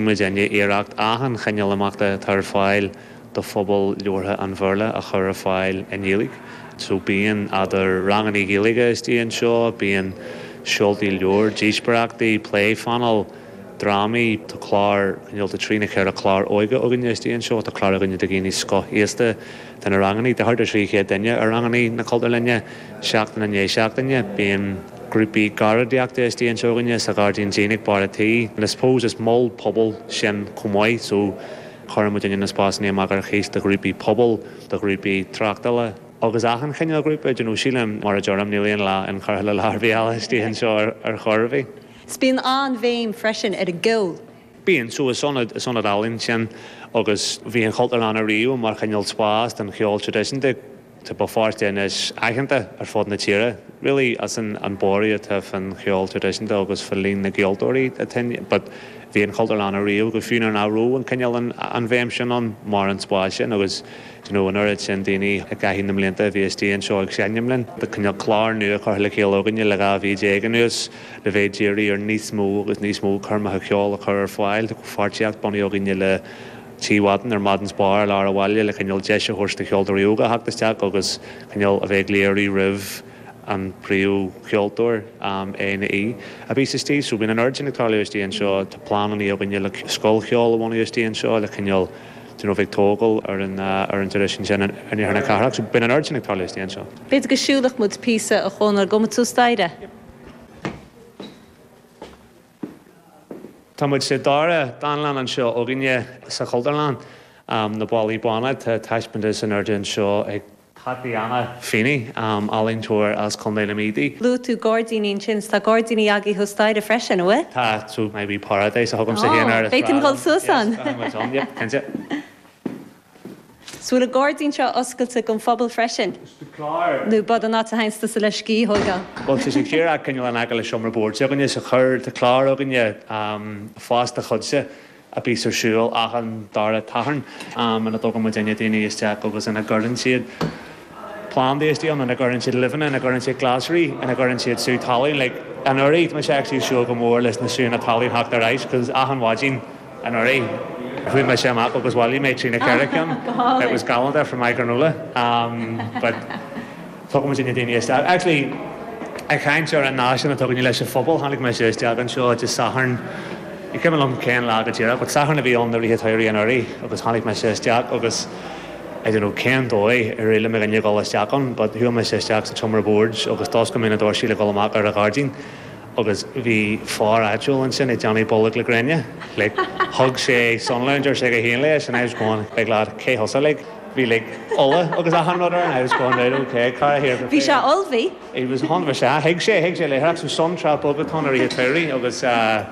muid i ndiaidh iarracht achan chineál imeachta atá ar fáil do phobal labhartha an Bhéarla a chur ar fáil i nGaeilge. So bíonn eadar rangannaí Ghaeilge istigh anseo, bíonn seoltaí leabhar, díospóireachtaí, pléphainéil, drámaí, tá clár, cineál, tá trí nó ceithre chlár óige againne istigh anseo, tá clár againne do dhaoine scothaosta, Tá na rangannaí de thart ar 300 duine i ranganna na Cultúrlainne seachtain i ndiaidh seachtaine. Bíonn grúpaí garraíodóireachta istigh anseo againne sa ghairdín dín ag barr a' tí. I suppose is mol pobail sinn chomh maith so cuireann muid na spásannaí amach ar cíos do ghrúpaí pobail, do ghrúpaí tráchtála agus achan chineál grúpa. Do you know, sílim, mar a deirim, níl aon lá inchurtha le lá ar bith eile istigh anseo ar chor ar bith. 'S bíonn an bhéim freisin ar an gceol. Bíonn so is ionad, is ionad álainn ansin agus bhí an Chultúrlann ariamh mar chineál spás don cheol traidisiúnta, tá Béal Feirste anois aitheanta ar fud na tíre really as an borradh atá faoin cheol traidisiúnta agus fá líon na gceoltóirí atá ann but bhí an Chultúrlann ariamh go fiú nuair nach raibh an cineál an bhéim sin ann mar an spás sin agus you know an oiread sin daoine i gcaitheamh na mblianta a bhí istigh anseo ag seinm linn, tá cineál clár nua curtha le chéile againne le dhá mhí déag anuas. le bheith ag iarraidh ar níos mó agus níos mó coirmeacha ceoil a chur ar fáil. Tá comhpháirtíocht bunaithe againne le Tigh Mhadden or Madden's Bar i lár an bhaile le cineál deis a thabhairt do cheoltóirí óga a theacht isteach agus cineál a bheith ag léiriú roimh an phríomhcheoltóir é nó í a bhíos istigh. So bíonn an oiread sin ag tarlú istigh anseo. Tá pleanannaí againne le scoil cheoil a bhunú istigh anseo le cineál d'you know bheith ag tógáil ar an ar an traidisiún sin in iarthar na cathrach. So bíonn an oiread sin ag tarlú istigh anseo. B'fhéidir go siúlfadh muid píosa a Chonor, gabhfaidh muid suas staighre? Tá muid sa dara dánlann anseo againne sa Chultúrlann, Na Ballaí Bána. Tá taispeántas in airde anseo ag Tatyana Feeney, ealaíontóir as Contae na Mí í. Luaigh tú gairdíní ansin, so tá gairdíní agaibh thuas staighre freisin, an bhfuil? Tá, so my wee paradise a thugaimse féin air. Ó, beidh tú ag dul suas ann? Yes, tá muid ann, yep, cinnte. 'S bhfuil an gairdín seo oscailte gon phobal freisin? Nó ab ann a théanns tusa le scíth a thóigeáil? Bhuel, tá sé thiar cineál in aice le seomra boird s'againne so chuir. Tá clár againne Fás do Chuidse a bíos ar siúl achan dara Satharn ina dtógann muidinne daoine isteach agus ina gcuireann siad. plandaí istigh ann ina gcuireann siad luibheanna, ina gcuireann siad glasraí, ina gcuireann siad sú talún like anuraidh tá mise actually ag súil go mór leis na sútha talún theacht ar ais because achan mhaidin anuraidh chuaigh mise amach agus bhailigh mé trí nó ceithre ceann it was galánta for my granola um but tugann muid na daoine isteach actually ag caint ar an naisc atá againne leis an phobal tháinig mise isteach anseo de Sathairn ní cuimhin liom cén lá go díreach but Sathairn a bhí ann áirithe Sathairn anuraidh agus tháinig mise isteach agus I don't know cén dóigh a d'éirigh leis a ghabháil isteach ann but chuaigh mise isteach sa tseomra boird agus d'oscail mé na doirse le dhul amach ar an ghairdín agus bhí fear áitiúil ansin ag déanamh bolg le gréine. Like, thug sé sun lounger dá chuid féin leis and I was going like lad cé thusa like bhí like ola agus achan rud air and I was going right ok cara here go Bhí sé féidir. olbhí. He was a hundred percent, thuig sé, thuig sé léitheoireacht so sun trap bogaton ar oíche caoirigh agus eh.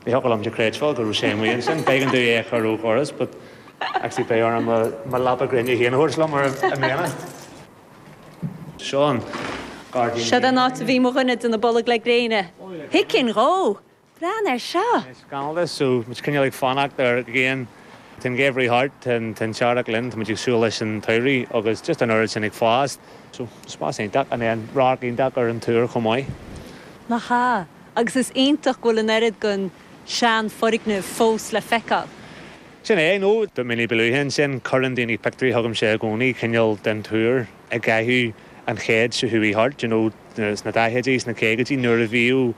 Ní thiocfadh liom a chreidbheáil go raibh sé amuigh ansin. B'éigean dom é a chur ó dhoras but actually beidh orm mo leaba gréine féin a thabhairt liom i mbliana. Seo an gairdín Seod an áit a bhí mo dhuine ag déanamh bolg le gréine. Thicinn dhó! Breathnaigh ar seo! Tá scamall de so muid cineál ag fanacht ar ghrian. Tá an geimhridh thart, tá an t-earrach linn, tá muid ag súil leis an tsamhradh agus just an oiread sin ag fás. So spás iontach and then radharc iontach ar an túr chomh maith. Nach ea! agus is iontach go bhfuil an oiread den sean foirgneamh fós le feiceáil. Sin é, níos mó ná mí ba luaithe ansin, cuireann daoine pictiúirí chugamsa i gcónaí, cineál den túr i gcaitheamh an chéid seo chuaigh thart, you know, sna daichidí, sna caogaidí, nuair a bhíodh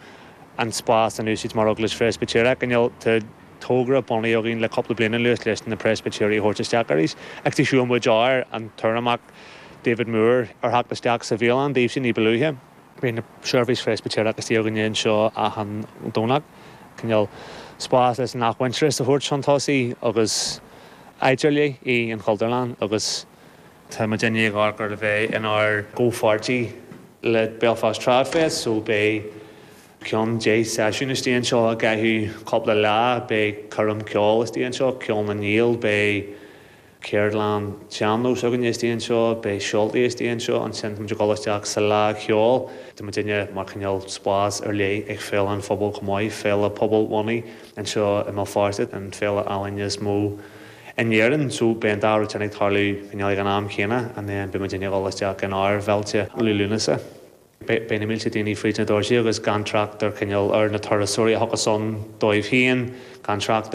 an spás in úsáid mar Eaglais Phreispitéireach, cineál, tá togra bunaithe againn le cúpla bliain anuas leis na Preispitéirigh a thabhairt isteach arís, agus thug muid ar an Urramach, David Moore, ar theacht isteach sa bhialann daoibhse ní ba luaithe. Bíonn seirbhís Phreispitéireach istigh againne anseo achan Domhnach, cineál spás leis an athmhuintearas a thabhairt chun tosaigh agus áit ar leith í an Chultúrlann agus, tá muid i ndiaidh ag amharc ar a bheith inár gcomhpháirtí le Belfast Trad Fest, so beidh cúpla seisiún istigh anseo i gcaitheamh cúpla lá, beidh coirm cheoil istigh anseo, Ceol na nGael, beidh. Ceardlann tsean-nós againn istigh anseo, beidh seoltaí istigh anseo, ansin táimid ag dul isteach sa Fhleadh Cheoil, tá muidinne mar cineál spás ar leith ag Féile an Phobail chomh maith, féile pobalbhunaithe anseo i mBéal Feirste, an féile ealaíne is mó in Éirinn, so beidh an dá rud sin ag tarlú cineál ag an am céanna and then beidh muidinne ag dul isteach in ár bhféilte Liú Lúnasa, beidh na mílte daoine fríd na doirsí agus gan trácht ar cineál ar na turasóirí a thiocfas as a ndóigh féin, gan trácht